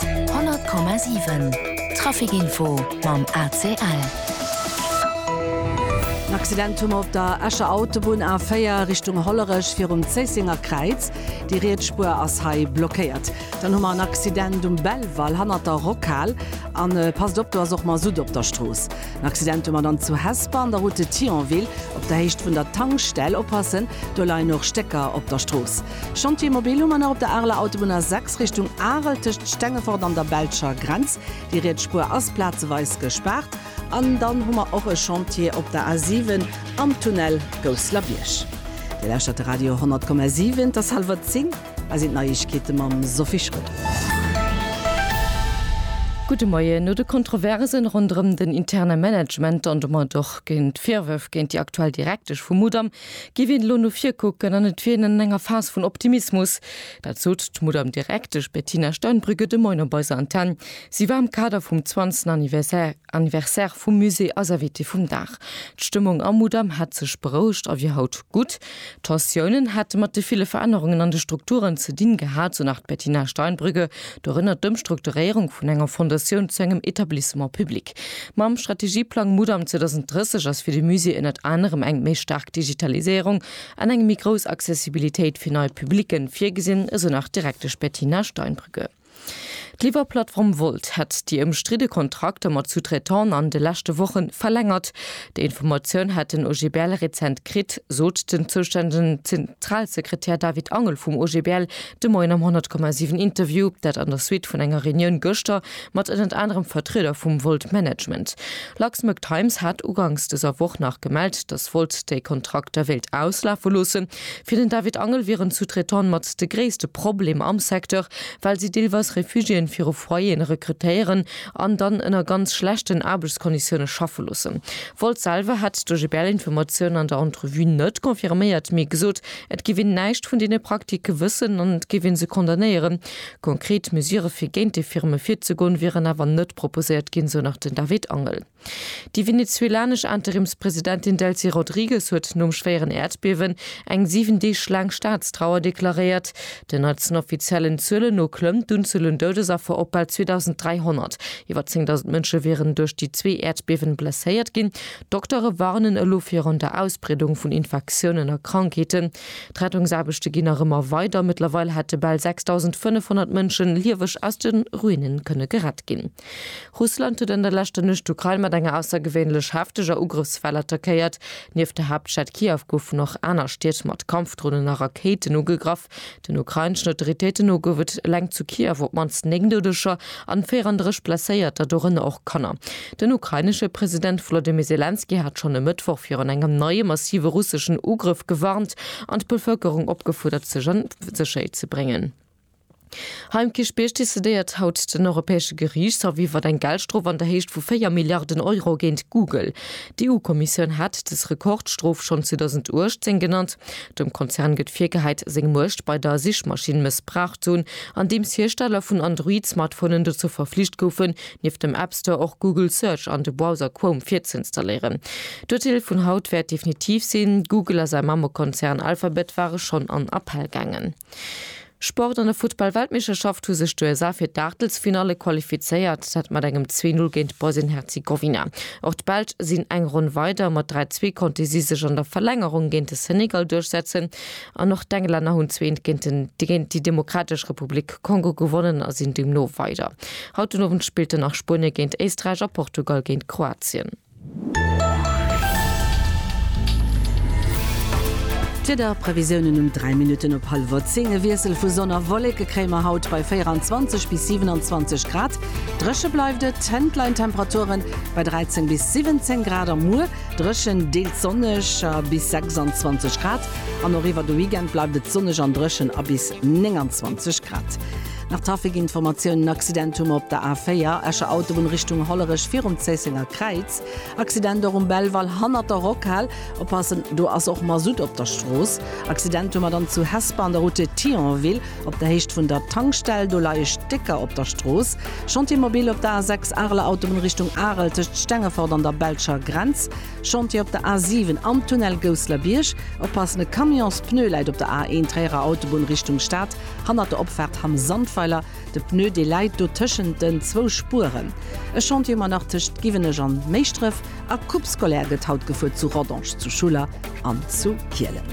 100,7 Trafic Info mam ACL. En Accident hu mer op der Escher Autobunn A4 Richtung Hollerech virum Zéissenger Kräiz. Déi riets Spuer ass hei blockéiert. Dann hu mer en Accident um Belval hannert der Rockhal. An passt op, do ass och Masutt op der Strooss. En Accident hu mer dann zu Hesper an der Route de Thionville op der Héicht vun der Tankstell. Oppassen, do leien och Stécker op der Strooss. Chantier mobil hu mer nach op der Areler Autobunn A6 Richtung Arel tëscht Stengefort an der belscher Grenz. Déi riets Spuer ass plazeweis gespaart. An dann hu mer och e Chantier op der A7 am Tunnel Gousslerbierg. Dir lauschtert de Radio 100,7. Et ass hallwer zéng a sinn d'Neiegkeete mam Sophie Schröder. Gudde Moien. No de Kontroversen ronderëm den interne Management an domat och géint d'Virwërf géint déi aktuell Direktesch vum Mudam Giff een elo no vir kucken an et wier een an enger Phase vun Optimismus. Dat sot d'Mudamm Direktesch Bettina Steinbrügge de Moin op eiser Antenn. Si war am Kader vum 20. Anniversaire vum Musée eis Invitée vum Dag. D'Stëmmung am Mudamm hätt sech berouegt a wier haut gutt. D'Tensiounen hätte mat de ville Verännerungen an de Strukturen ze dinn gehat, sou nach d'Bettina Steinbrügge. Dorënner d'Ëmstrukturéierung vun enger Fondatioun zu engem Etablissement public. Mam Strategieplang Mudam 2030 ass fir de Musée ënnert anerem eng méi staark Digitaliséierung an eng méi grouss Accessibilitéit fir nei Publicke virgesinn, esou nach d'Direktesch Bettina Steinbrügge. D'Liwwerplattform Wolt hätt déi ëmstridde Kontrakter mat Sous-traitante an de leschte Woche verlängert. Déi Informatioun hätt den OGBL rezent kritt, sot den zoustännegen Zentralsekretär David Angel vum OGBL de Moien am 100,7 Interview, dat an der Suite vun enger Reunioun gëschter mat ënnert anerem Vertrieder vum Volt Management. Luxembourg Times hat uganks dëser Woch nach gemellt, datt Volt déi Kontrakter wéilt auslafe loossen. Fir den David Angel wieren d'Sous-traitante mat de gréisste Problem am Secteur, well si deelweis Refugiéen fir u Foyeren rekrutéieren an dann ënner ganz schlechten Aarbechtskonditioune schaffe loossen. Volt selwer hätt der GBL-Informatiounen an der Entrevue net confirméiert, mee gesot, et géif een näischt vun deene Praktike wëssen an et géif ee se condamnéieren. Konkret Mesure fir géint déi Firme virzegoen, wieren awer net proposéiert ginn, sou nach den David Angel. Déi venezuelanesch Interimspresidentin Delcy Rodrigues huet nom schwéieren Äerdbiewen eng 7 Deeg laang Staatstrauer deklaréiert. Den neitsten offiziellen Zuelen no klëmmt d'Unzuel un Doudesaffer op bal 2.300. Iwwer 10.000 Mënsche wieren duerch déi zwee Äerdbiewen blesséiert ginn. D'Doktere warnen elo virun der Ausbreedung vun Infektiounen a Krankheeten. D'Rettungsaarbechte ginn nach ëmmer weider. Mëttlerweil hätte bal 6.500 Mënsche lieweg aus de Ruine kënne gerett ginn. Russland huet an der leschter Nuecht d'Ukrain mat enger aussergewéinlech hefteger Ugrëffswell attackéiert. Nieft der Haaptstad Kiew goufen och aner Stied mat Kampfdronen a Rakéiten ugegraff. Den ukraineschen Autoritéiten no gouf et eleng zu Kiew op d'mannst 9 Doudeger an 34 Blesséierter, dorënner och Kanner. Den ukrainesche President Wolodymyr Selenskyj hat schonn e Mëttwoch virun engem neie massive russeschen Ugrëff gewarnt an d'Bevëlkerung opgefuerdert, sech an Sécherheet ze bréngen. Hei um Kierchbierg decidéiert haut den Europäesche Geriichtshaff iwwert eng Geldstrof an der Héicht vu 4 Milliarden Euro géint Google. D'EU-Kommissioun hat dës Rekordstrof schonn 2018 genannt. Dem Konzern gëtt virgehäit, seng Muecht bei der Sichmaschinn mëssbraucht ze hunn, andeems Hiersteller vun Android-Smartphonen dozou verflicht goufen, Nieft dem App Store och Google Search an de Browser Chrome virzeinstalléieren. D'Urteel vun haut wäert definitiv sinn. Google a säi Mammekonzern Alphabet ware schonn an Appell gaangen. Sport, An der Futtball-Weltmeeschterschaft hu sech d'USA fir d'Aachtelsfinalle qualifizéiert, dat mat engem 2, 0 géint Bosnien-Herzegowina. Och d'Belsch sinn eng Ronn weider. Mat 3, 2 konnte si sech an der Verlängerung géint de Senegal duerchsetzen. An och d'Englänner hunn zweent géint déi Demokratesch Republik Kongo gewonnen a sinn deemno weider. Haut den Owend spillt dann nach Spuenie géint Éisträich a Portugal géint Kroatien. D'Wiederprevisiounen um 3 Minutten op hallwer 10, E Wiessel vu Sonn a Wolleke kréie mer haut bei 24 bis 27 Grad. Dréche bleift et, d'Hënt leien d'Temperature bei 13 bis 17 Grad a muer Dréchen, deels sonneg a bis 26 Grad. An och iwwer de Weekend bleift et sonneg an dréchen a bis 29 Grad. Nach Trafikinformatioun, En Accident hu mer op der A4, Escher Autobunn Richtung Hollerech, virum Zéissenger Kräiz. Accident och um Belval hannert der Rockhal. Oppassen, do ass och Masutt op der Strooss. Accident hu mer dann zu Hesper an der Route Thionville. Op der Héicht vun der Tankstell, do leie Stécker op der Strooss. Chantier mobil op der A6, Areler Autobunn Richtung Arel, tëscht Stengefort an der belscher Grenz. Chantier op der A7, am Tunnel Gousseler-Bierg. Oppassen, e Camions-Pneu läit op der A1, Tréierer Autobunn Richtung Stad, hannert der Opfaart Hamm Sandweiler. De Pneu, dee läit do tëschent den zwou Spueren. E Chantier ëmmer nach tëscht Giwenech an Méischdref. A Coupe scolaire gëtt haut gefuer zu Rodange, zu Schuller an zu Kielen.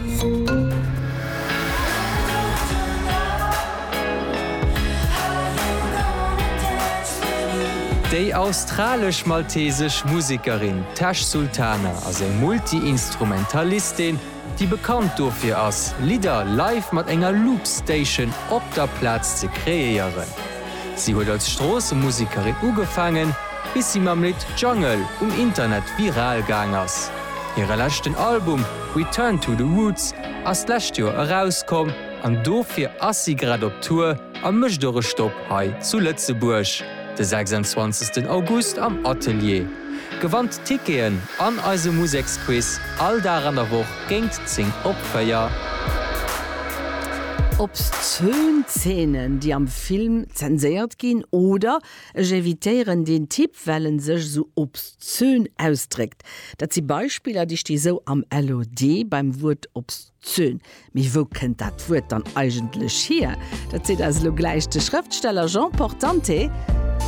Déi australesch-maltesesch Musekerin Tash Sultana ass eng Multi-Instrumentalistin, déi bekannt dofir ass, Lidder live mat enger Loopstation op der Plaz ze kreéieren. Si huet als Stroossemusekerin ugefaangen, bis si mam Lidd Jungle um Internet viral gaang ass. Hire leschten Album Return to the Roots ass d'lescht Joer erauskomm an dofir ass si grad op Tour a mécht och e Stopp hei zu Lëtzebuerg de 26 August am Atelier. Gewannt Ticketen an eise Museksquiz all Dag an der Woch géint 10 op 4. Obszön Zeenen, déi am Film zenséiert ginn, oder Ech evitéieren deen Typ, well en sech esou obszön ausdréckt, dat si Beispiller, déi sti sou am LOD beim Wuert obszön. Zöhn. Mee wou kënnt dat Wuert dann eigentlech hier? Dat seet eis elo gläich de Schrëftsteller Jean Portante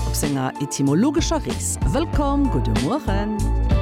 op senger etymologescher Rees. Wëllkomm, gudde Mueren!